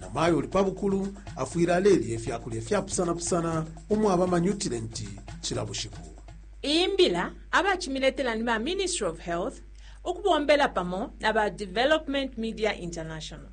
namayo uli pa bukulu afwile alelya ifya kulya ifyapusanapusana umwaba amanyutilenti cila bushiku iyi mbila abacimiletela ni ba ministry of health ukubombela pamo na ba development media international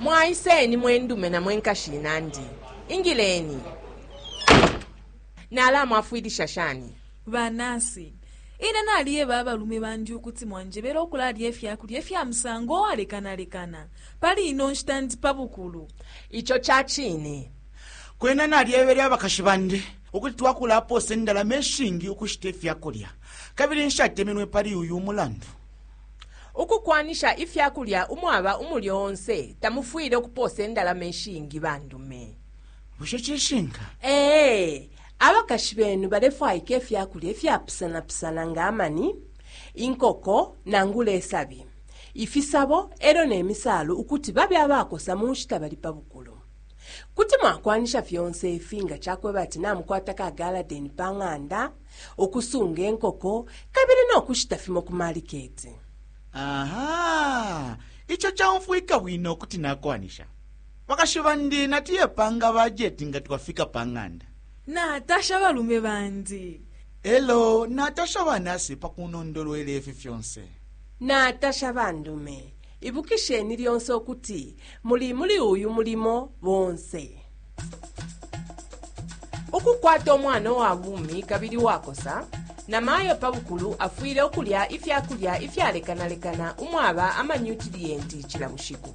mwaiseni mwendume na mwenkashi inandi ingileni Nalamwafwilisha shani? Ba nasi, Ine naliyeba abalume bandi ukuti mwanjebele ukulalya ifya kulya ifya musango uwalekanalekana. Pali ino nshita ndi pa bukulu. Ico ca cine. Kwena nalyebele abakashi bandi ukuti twakulapoosa indalama ishingi ukushita ifya kulya, kabili nshatemenwe pali uyu mulandu. Ukukwanisha ifya kulya umwaba umulyo onse tamufwile ukupoosa indalama ishingi. Bandume. bushe cishinka ee abakashi benu balefwaika ifya kulya ifyapusanapusana nga amani inkoko nangula isabi ifisabo e lyo ne misaalu ukuti babe abakosa mu nshita bali pa bukulu kuti mwakwanisha fyonse ifi nga cakweba ati namukwata ka galadeni pa ng'anda ukusunga inkoko kabili no kushita fimo ku maliketi aha ico caumfwika bwino kuti nakwanisha Bakashi bandi natuyepanga bajeti nga twafika pa ng'anda. Natasha abalume bandi. E lyo natasha banasi pa kunondolwela ifi fyonse. Natasha bandume. Ibukisheni lyonse ukuti muli muli uyu mulimo bonse. Ukukwata umwana uwa bumi kabili uwakosa, namayo pa bukulu afwile ukulya ifya kulya ifyalekanalekana umwaba amanyutiliyenti cila bushiku.